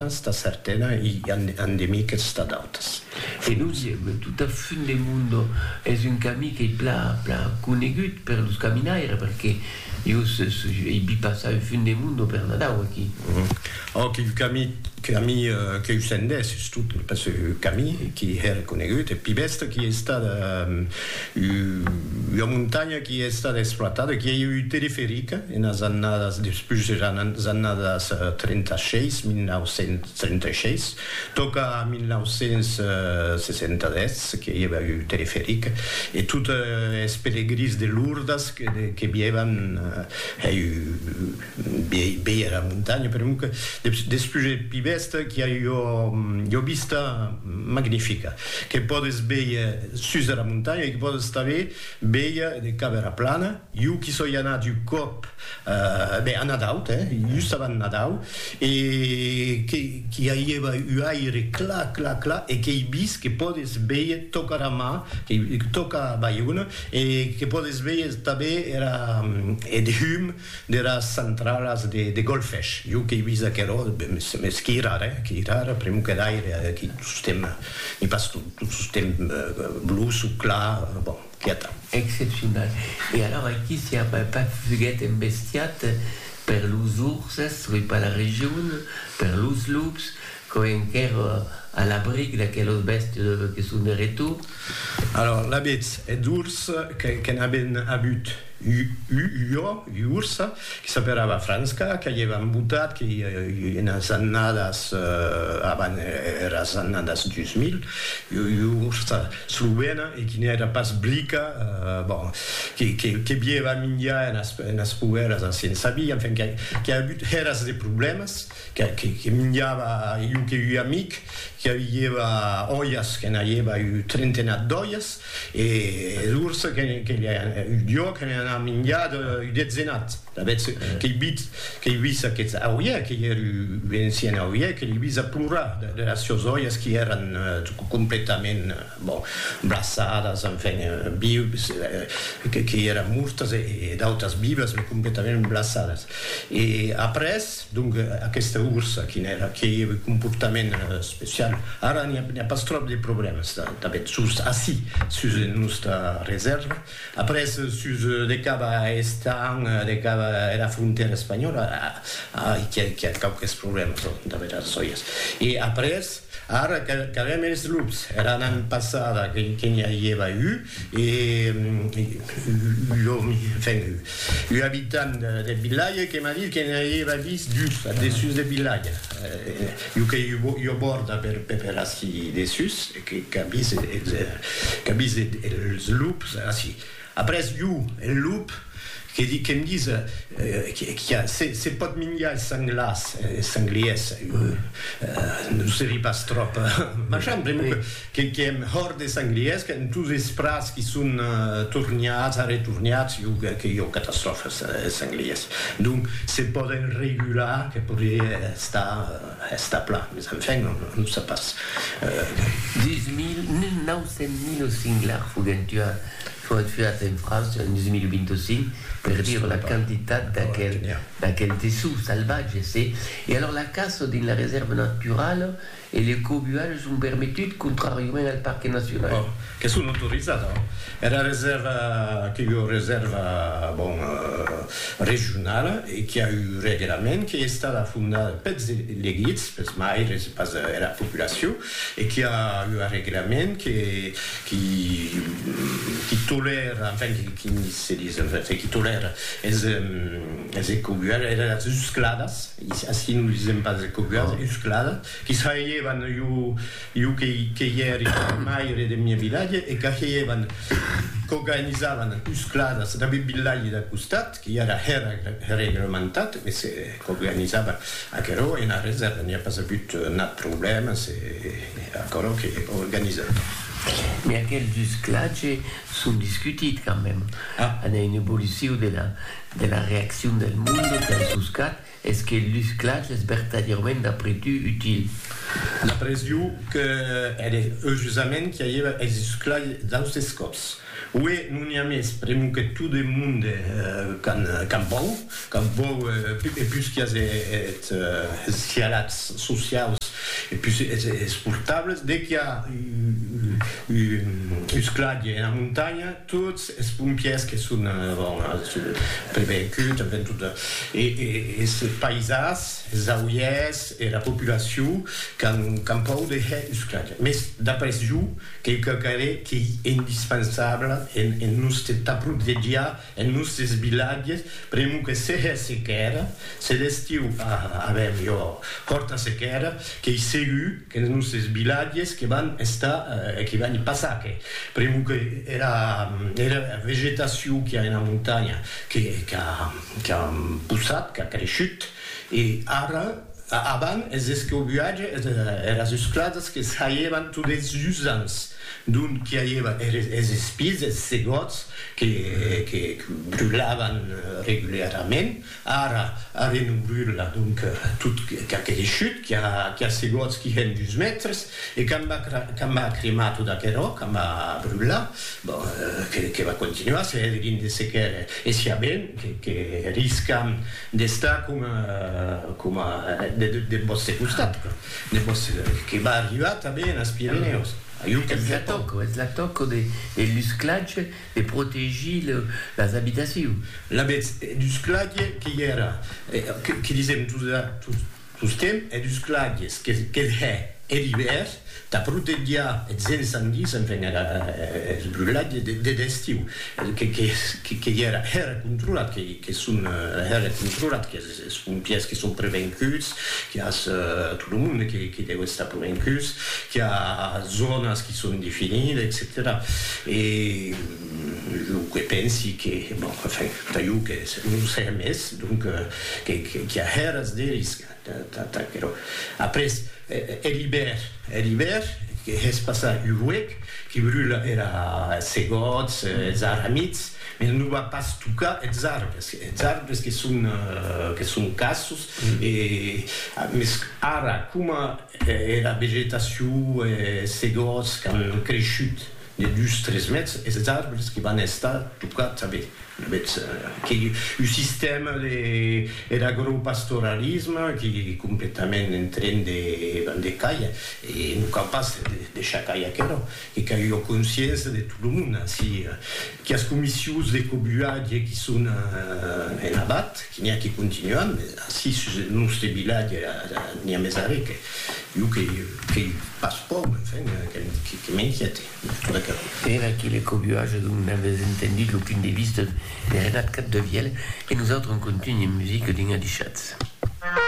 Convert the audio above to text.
Sta sartèla i endemiques sta d'autas. E los tot a fund de mundo es un cami qu'ei pla pla conegut per los caminaires perque jo ei vi passar un fund de mundo per Nadau aquí. Ò quil cami cami queu sendèsses tot pas cami qui hèr conegut e pi bèsta qui ei estada Ua montanha qui a estat exploitada, qui a ieu un teleferic enas annadas, despús eras annadas 36, 1936, tòca a 1967 que i ava un teleferic e tot es pelegrins de Lourdes que vievan hèi Viei era montanha per un despuget pi bèsta qu'i a ua vista magnifica que pòdes véier sus dera montanha e que pòdes tanben véier de cap era plana. Jo qu'i soi anat un còp ben a Nadau, just avant Nadau e qu'i aieva un aire clar, clar, clar e qu'ei vist que pòdes véier tòca era mar, tòca Baiona e que pòdes véier tanben era eth hum deras centralas de golfesh, jo qu'ei vist aquerò, mès qu'i rara, eh, qu'i rara, pr'emu que d'aire, aqui tostemp n'i pas tot, tot tostemp bluç o clar, bon, quieta. Excepcional. E alors aqui s'i a pas fuguet embestiat per los urses, soi pas la region, per los lups, Quò enquèr a l'abric d'aquelos bèstes que son de retor. Alòr, l'abetz eth urs que n'aben avut ua ua ursa que s'aperava Franska, qu'aievan embotat que i enas annadas avant eras annadas 2000, ua ursa slovena e qui n'èra pas blica, bon, que bieva minjar enas poèras a Siensabi, enfin, qu'a avut hèras de problèmas. que minjava iu que ui amic que aviieva oias que n'aieva iu trentenat d'oias e d'urs que iuo que ne anava minjat iu detzenat d'avetz que i bit que i vis aqueth auie que i er iu encien auie que li vis a plorar de las sios oias qui eran completament bon braçadas enfin vius que i eran mortas e d'autas vivas me completament braçadas e après Donc aquesta ursa quin èra? Qué comportament especial? Ara n'i a pas tròp de problèmas tanben sus ací, sus nosta resèrva. Après sus de cap a Estañ, de cap a era frontèra espanhòla, ai qu'i a quauques problèmas damb era sòias. E après ara qu'avèm es lups, era annada passada que n'i a ieva un, E un abitant deth vilatge que m'a dit que ne auieva vist dus ath dessús deth vilatge. Un que ua bòrda per ací dessús, qu'a vist es lups ací. Après un, un lup, que'm ditz que se pòt minjar es sanglars, es sangliers, non se ri pas tròp, machan, pr'amor que Que qu'èm hòrt de sanglièrs, qu'èm tous esprats qui son torniats, arretorniats, jo que que jo catastròfes es sanglièrs. Donc se pòden regular que podrié estar estar plan, mes enfin on on sap pas. Deus mil mil nau cents mil singlars foguèn tuats foguèt tuats en França en 2025 per dire la quantitat d'aquel d'aquel dessous salvatge, se e alors la caça dins la resèrva naturala E le cobualh son permetut contràriament al parque nacional. Bon, que son autorizat, hein. Era resèrva que ua resèrva, bon, regionala e qui a un reglament qu'ei estada fondada peths elegits, peths maires e pas era populacion e qui a ua reglament que qui qui tolèra, enfin, qui se dis, enfin, qui tolèra es es ecobualhs, eras uscladas. Ací nos disèm pas de cosas uscladas, que sajevan jo que i èri maire deth mieu vilatge e qu'ajevan, qu'organizavan uscladas deth vilatge dau costat, que i èra reglementat, mès qu'organizavan aquerò e ena resèrva n'i a pas agut nat problèma, se aquerò que organizavan. Mès aqueles usclatges son discutits quand même, an una evolucion de la. de la reaccion del monde per sos gat es que lus clachs es vertadièrament d'après tu util. D'après jo que ère eujusament qu'i aièva es sus clachs d'austes còps. Uè, non i a mès, pr'emu que tot eth monde qu'an pòur, qu'an pòur e pus qu'i as eth sialats sociaus e pus es portables, de qu'i a un clach ena montanha, Tots es pompiers que son prevenguts, enven tot es paisas, es auiers, era populacion qu'an pòu de hèr usclatge. Mès d'après jo, quauquarre qu'ei indispensable en nòste tà protegiar es nòstes vilatges, pr'amor que se hè sequèra, se d'estiu avèm ua hòrta sequèra, qu'ei segur, Qu'es nosses vilatges que van estar e que van passar que pr'amor que era era vegetacion qu'i a ena montanha que qu'a qu'a possat, qu'a creishut e ara avan es escobuatge es eras esclasas que saievan tot es usants d'ont qu'i aieva eres es espises, es segòts que que que brulavan reguliarament Ara, ara non brula, donc, tot qu'aquele chut qui a segots qui hèn dus mètres, e qu'a m'a cremar tot aquerò, qu'a m'a brular, bon, que va continuar, se hège dins de sequèr, e siá ben que riscam d'estar coma deth vòste costat, que va arribar tanben as Pirenèus. Ajú, qu'ac ven. Es la tòca, es la tòca de lusclatge. De protegir las abitacions. L'avètz dus clague que ièra, que disèm tostemp, hè dus clagues, que hè er ivèr, tà protegiá eths ensandis, enfin eths brulats deth estiu, que ièra hèra controlat, que son hèra controlat, que. Es pompièrs que son prevencuts, qu'i a tot lo monde que deu estar prevencus, qu'i a zònas que son definidas, etcetèra. E lo que pensi que, bon, enfin, tà jo que non serà mès, donc, qu'i a hèras de risc tà aquerò. Après, hè l'ibèr, hè l'ibèr, que hèspas a Uruec, que brula era, es segòts, es arramits, Mai non va pas tocar eths arbres, eths arbres que son que son cassos e mes ara coma era vegetacion e se gòts qu'an creishut de dus tres mètres eths arbres que van estar tocats a vei avètz que un sistèma de er agropastoralisme que completament en tren de van de cair e non cau pas de deixar cair aquerò. Que qu'a ua consciéncia de tot lo monde ací, quias comissius de cobuatge qui son en abat, qui n'i a qui continuen, mes ací sus eth nòste vilatge n'i a mes arré que iu que qu'ei pas pòur, enfin, que m'inquiète. Era que le cobuatge dont n'aves entendut lo punt de vista de Renat Capdevièlh e nosautres en contunh en musica dins Adichatz.